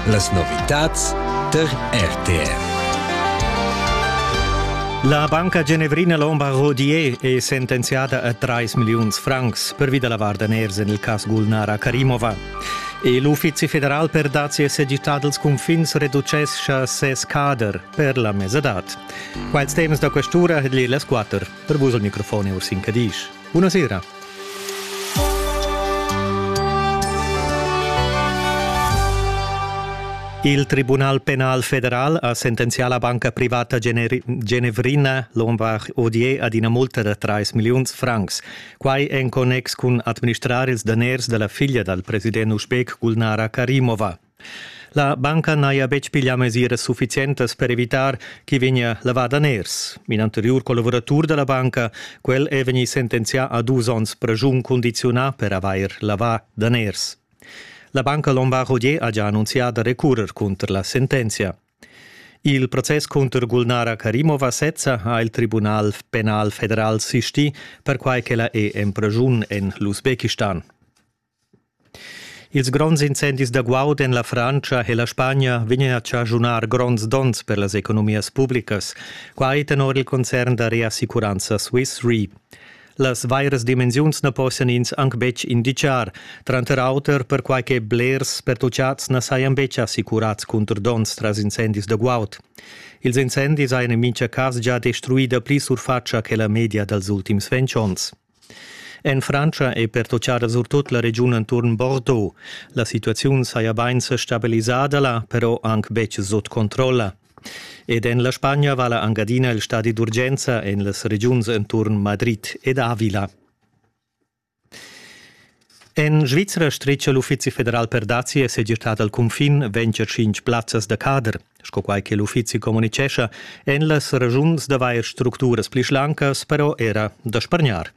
Las novitads per RTR. La banca genevrina Lombard Rodier è sentenziada a 3 milliuns francs pervi da la var daners en il cas Gulnara Karimova. E l'Uffizi federal per dazi e segità dals cunfins reducescha ses cader per la mesadad. Quels temas da questura ha las quatter. Per vus al microfon è Ursin Cadisch. Buona sera. Il Tribunal penal federal ha sentenzià la banca privata genevrina Lombard Odier ad ina multa da 3 milliuns francs. Quai en connex cun administrar ils daners da la figlia dal president usbek Gulnara Karimova. La banca n'haja betg piglià mesiras suffizientas per evitar ch'i vegnia lavà daners. In anteriur collavuratur da la banca, quel è vegnì sentenzià a dus onns praschun cundiziunà per avair lavà daners. La banca Lombard-Rodier ha già annunzià da recurrer cunter la sentenzia. Il process cunter Gulnara Karimova sezza ha il Tribunal penal federal sistì, perquai ch'ella è en praschun en l'Usbekistan. Ils gronds incendis da guaud en la Frantscha e la Spagna vegnan a chaschunar gronds donns per las economias publicas, quai tenor il concern da reassicuranza Swiss Re. Las vairas dimensiuns na possian ins anc betg inditgar, tranter auter perquai che blers pertutgads na sajan betg assicurads cunter donns tras incendis da guaud. Ils incendis hajan en mintga cas gia destruì dapli surfatscha che la media dals ultims ventg onns. En Frantscha è pertutgada surtut la regiun enturn Bordeaux. La situaziun saja bain sa stabilisada là, però anc betg sut controlla. Ed en la Spagna vala anc adina il stadi d'urgenza en las regiuns enturn Madrid ed Avila. En Svizra stricia l'Uffizi federal per dazi e segirtà dal cunfin venture cinc plazzas da cader. Sco quai che l'uffizi communicescha, èn las ragiuns d'avair structuras pli schlancas però era da spargnar.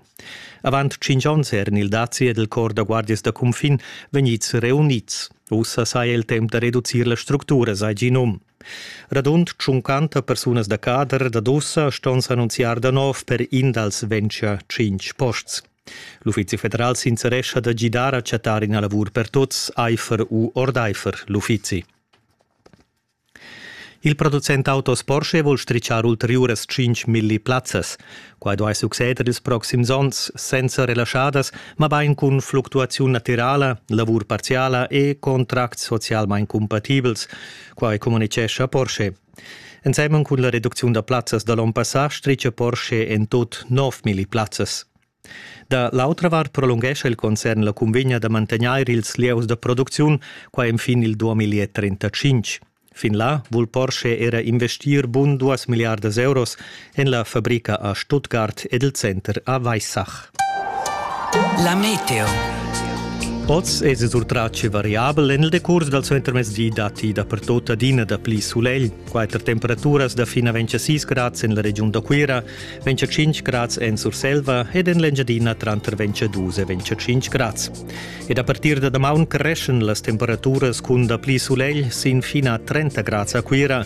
Avant cinc onns eran il dazi ed il cor da guardias da cunfin vegnids reunids. Ussa saja il temp da reducir las structuras, hai gì num. Radund 50 persunas da cader dad ussa ston s'annunziar da nov per in dals venture cinc posts. L'Uffizi federal sincerescha da gidar a chattar ina lavur per tuts, aifer u ordaifer l'uffizi. Il producent autos Porsche vul stricciar ulteriuras 5.000 plazzas. Quai duai succeder ils proxims onns senza relaschadas, mabain cun fluctuaziun natirala, lavur parziala e contracts socialmain cumpatibels. Quai communitgescha Porsche. Ensemen cun la reducziun da plazzas da l'onn passà stricia Porsche en tut 9.000 plazzas. Da l'autra vart prolunghescha il concern la cunvegna da mantegnair ils lieus da producziun, qua enfin il 2035. Fin là vul Porsche era investir bun 2 miliardas euros en la fabrica a Stuttgart ed il center a Weissach. La meteo. Oz è surtratg variabel en il decurs dal suentermezdi datti dapertut adina dapli sulegl. Quatter temperaturas da fin a 26 grads en la regiun da Cuira, 25 grads en Surselva ed en l'Engiadina tranter 22 e 25 grads. Ed a partir da damaun creschen las temperaturas cun dapli sulegl sin fina a 30 grads a Cuira